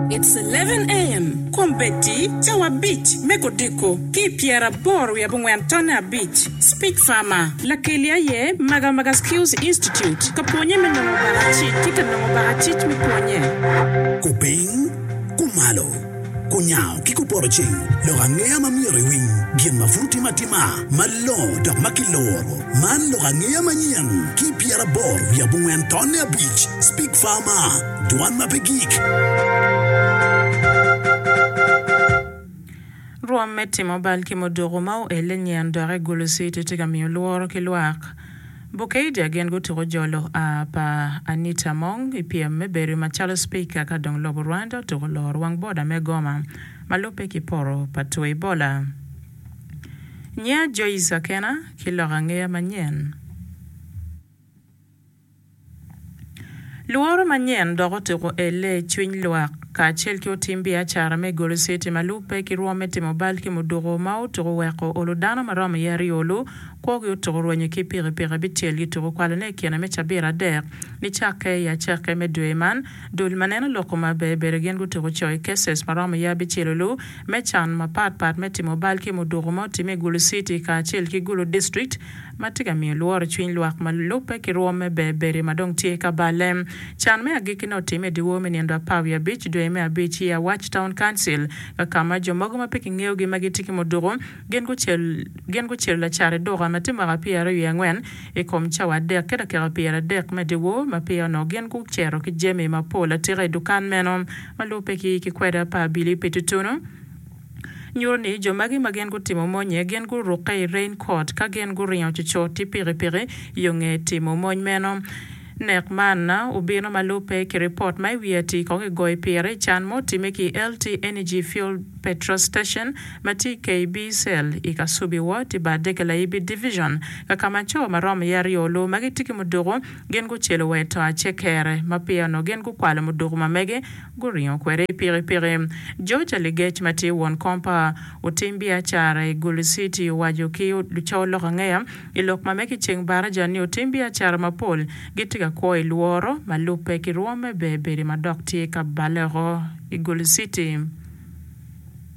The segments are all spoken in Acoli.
It's eleven AM, Kombeddi cawa abic me kodiko ki i pyeraboro wiye abongwen tonne abic, Speech Farmer. Lakeli aye Magamaga Skills Institute ka pwonye me nongo baka cic ki ka nongo baka cic me pwonye. Kupiny, kumalo, kunyango ki kuporoceng lok angeya ma myero iwiny gin ma pud otime atima malongo dok ma kiluro. Man lok angeya manyen ki i pyeraboro wiye abongwen tonne abic, Speech Farmer. Dwan ma pe gik. Rwom me timo bal ki muduku ma oelle nyen dok egolo citi tye ka miyo lworo ki lwak. Bukeija gin gutuko jolo a pa Anita Among i pyem me bedo macalo Speaker ka dong lobo Rwanda otuko loro wang boda me Goma ma lubbe ki poto pa Twoi Bola. Nyinga Joyce Akena, ki loko angeya manyen. Lworo manyen dok otuko elle i cwiny lwak. Kacel ki otim biacara me golo citi ma lubbe ki rwom me timo bal ki muduku ma otuko oweko olo dano ma romo iye aryo olu kwogi otuko rwenyo ki pikipiki abicel gituko kwalone i kine me cabit adek nicakke i acake me dwe man. Dul ma neno lok kome aber bedo gin gutuko co i cases ma romo iye abicel olu me can mapatpat me timo bal ki muduku ma otime i gulu citi kacel ki gulu district ma tye ka miyo lworo cwiny lwak ma lubbe ki rwom me Berberi ma dong tye ka balle. Can me agikkine otimme i dyewor me nindo apar wiye abic, dwe me abic, year Watch Town Council, ka ka ma jo mogo ma pe kingeyogi ma gitye ki muduku gin gucel gin gucelo lacat i duka ma tye mwaka pyeraryo wiye angwen i kom cawa adek ki dakika pyeradek me dyewor ma peya onongo gin gucito ki jami mapol atika i dukan meno ma lubbe ki ki kwede apar abili pe tutunu. nyuto ni jo magi ma gin gutimo monye gin gurukke i rain coat ka gin guringo cocot ki pikipiki yo nge timo mony meno. Nek man obino ma lubbe ki ripot ma i wiye ati kong i goyo pire i can ma otime ki LT Energy Fuel Petrol Station ma tye i KB Cell i Kasubi Ward i Badege Laibi Division ka ka ma co ma romo iye aryo olur ma gitye ki muduku gin gucelo wa i to acekere ma peya onongo gin gukwalo muduku ma mege Guringo kwede i pikipiki. George Aligec ma tye won kom pa otim biacara i Gulu City owaco ki luco lokangeya i lok ma mege i ceng baraja ni otim biacara mapol gitye ka kwo i lworo ma lubbe ki rwom me bedo bedi ma dok tye ka baleo i Gulu City.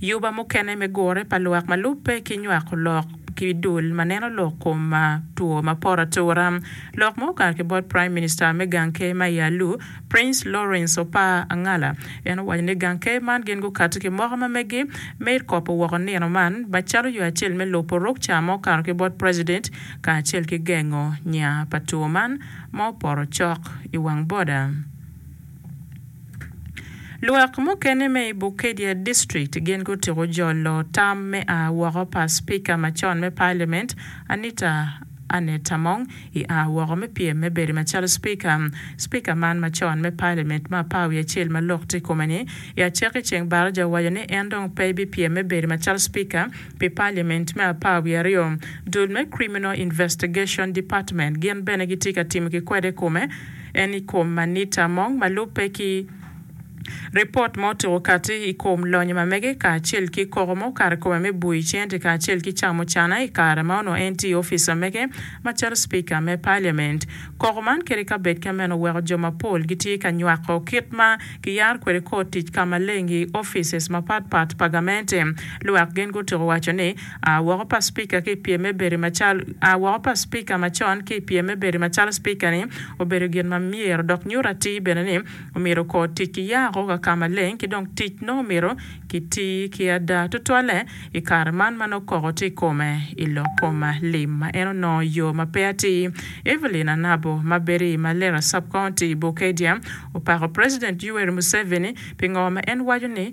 Yuba mukene me gure pa lwak ma lubbe ki nywako lok ki dul ma neno lok kom two ma poto atura. Lok ma okato ki bot Prime Minister me gang ker ma i Alu, Prince Lawrence Opar Angala, en owaco ni gang ker man gin gukati ki moko ma megi me kopo woko nino man ba calo yo acel me lubo ruk ca ma okato ki bot President kacel ki gengo nya pa two man ma opoto cok i wang boda. Lwak mukene me i Bukedea district gin gutyeko jolo tam me a woko pa Speaker macon me Parliament Anita Annet Among i a woko me pyem me bedo macalo Speaker. Speaker man macon me Parliament ma apar wiye acel ma lok tye ikome ni i acakki ceng Baraza owaco ni en dong pe bipyem me bedo macalo Speaker pi Parliament me apar wiye aryo. Dul me Criminal Investigation Department gin bene gitye ka timo ki kwede ikome. en i kom manita mong ma lubbe ki ripot ma otuko kati i kom lonyo ma mege kacel ki koko mo kare kome me bui cente kacel ki camo cana i kare ma onongo en tye i ofica mege macalo Speaker me Parliament. Koko man kede ka bed ka meno oweko jo mapol gitye ka nywako kit ma kiyaro kwede kor tic ka maleng i offices mapat pat pa gamente. Lwak gen gutuko waco ni. A woko pa Spika ki i pyem me bedo macalo A woko pa Spika macon ki i pyem me bedo macalo Spika-ni obedo gin ma myero dok nyuto atir bene ni omyero okor tic ki yako ka ka maleng ki dong tic nongo omyero kiti ki ada tutwalle i kare man ma nongo koko tye i kome i lok kom lim ma en onongo yo ma pe atir. Evelyn Anabo ma bedo i Malera Sub-County, Bokedia, opako President Yoweri Museveni pi ngo ma en waco ni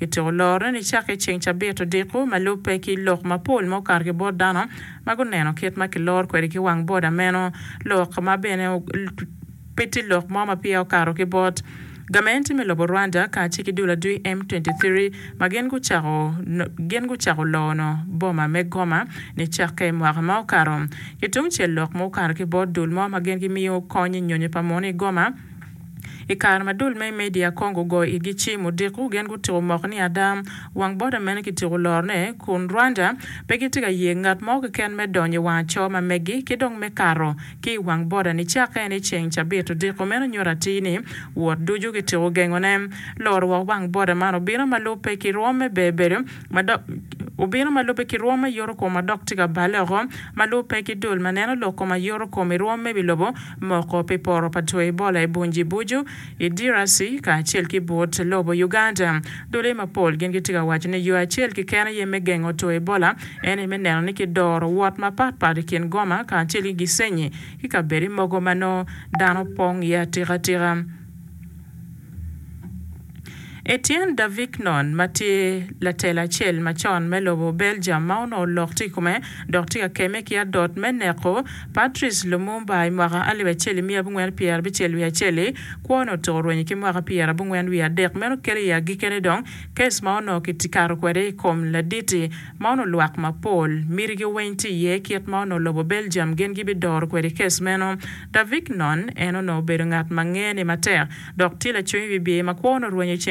Ityeko lorone nicake i ceng cabit odiko ma lubbe ki lok mapol ma okato ki bot dano ma guneno kit ma kiloro kwede ki wang boda meno lok ma bene pe tye lok mo ma peya okato ki bot gamente me lobo Rwanda kacel ki dul adwi M23 ma gin gucako gin gucako lono boma me Goma nicake mwaka ma okato. Ki tungcel lok ma okato ki bot dul mo ma gin gimiyo kony i nyonyo pa munu i Goma I kare ma dul me i media kong gugoyo igi cim odiko, gin gutyeko moko ni ada wang boda meno kityeko lorone, kun Rwanda pe gitye ka ye ngat mo keken me donyo i wang aco ma meggi ki dong me kato ki i wang boda nicakke ni ceng cabit odiko meno nyuto atir ni wot ducu kityeko gengone. Loro woko wang boda man obino ma lubbe ki rwom me ber bedo ma dok obino ma lubbe ki rwom me yoto kom ma dok tye ka balle oko ma lubbe ki dul ma neno lok kom ayoto kom i rwom me bilobo moko pi poro pa two Ebola i Bunji Buju i DRC kacel ki but lobo Uganda. Dule mapol gin gitye ka waco ni yo acel keken aye me gengo two Ebola ene me neno ni kidoro wot mapat pat i kin Goma kacel ki Gisenyi ki kabedi mogo ma nongo dano pong iye atika tika. Etienne Davignon ma tye latela acel macon me lobo Belgium ma onongo lok tye i kome dok tye ka kemme ki adot me neko Patrice Lumumba i mwaka alip acel i miya abongwen pyera abicel wiye acel-li, kwone otuko rwenyo ki mwaka pyera abongwen wiye adek. Meno kelo i agikene dong kes ma onongo kikato kwede i kom laditi ma onongo lwak mapol mitigi weny tye iye. Kit ma onongo lobo Belgium gin gibidoro kwede kes meno. Davignon en onongo obedo ngat ma ngene matek, dok tye lacwiny bibye ma kwo onongo rwenyo i ceng.